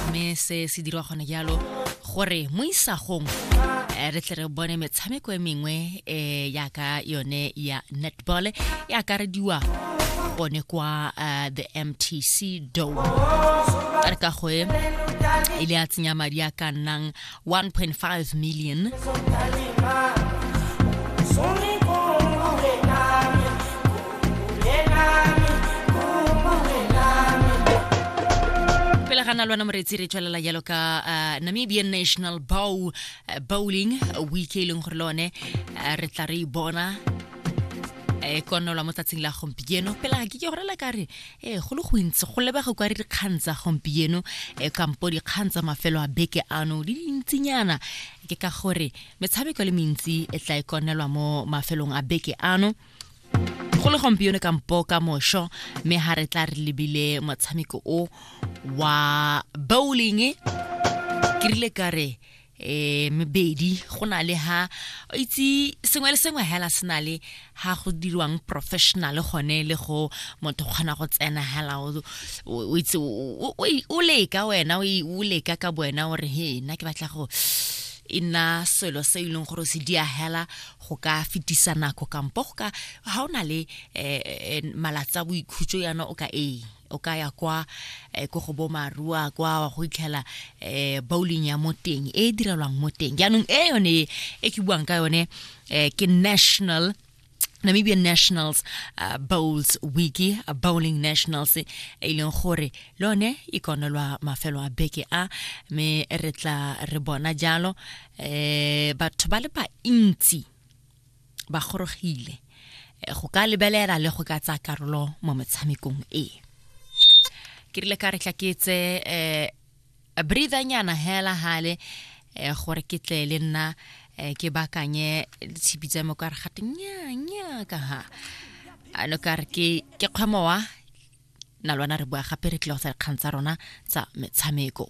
mme se se dirwa gone jalo gore mo isagong eh, re tle re bone metshameko e mengwe um eh, yaka yone ya netball e akarediwa gone kwa eh, the mtc dome re ka goe e le a tsenya madi a ka nnang 1.5 million. pele ga nalwana moretsi re tswelela jalo ka uh, namibian national bow uh, bowling week e leng gore le one uh, re tla re e bona e konolwa mo tsatsing la gompieno pela ke ke gorela ka re ee go le gontsi go lebega kwa re dikgang tsa gompieno e kampo dikgang tsa mafelo a beke ano di dintsinyana ke ka gore metshameko le mentsi e tla e konelwa mo mafelong a beke ano go le gompieno kampo ka mosho mme ga re tla re lebile motshameko o wa bowling ke rile ka re eh mebedi go na le ha o itse sengwe le sengwe hela se na le ha go dirwang professional gone le go motho kgona go tsena hela o itse o leka wena o leka ka wena o re he nna ke batla go e nna selo se e leng gore se di hela go ka fetisa nako kampo go ka ga o na le um malatsa boikhutso yana o ka ee o ka ya kwa eh, ko go bomarua kwa wa go itlhela eh, bowling ya mo teng e e direlwang mo teng jaanong e yone e, e ke buang ka yone eh, ke national Namibian Nationals uh, Bowls Wiki uh, Bowling Nationals e e leng gore le one e konelwa mafelo a beke a me re tla re bona jalo eh batho ba le bantsi ba gorogile eh, go ka lebelela le go ka tsaya karolo mo metshamekong e ke rile ka re tla ke tse um breathanyana hela hale um gore ke tle le nna um ke bakanye ditshipi tsa me ka re gate nyanya ka ha ano ka re ke kgwemowa na lwana re bua gape re tlile go sa dikgang tsa rona tsa metshameko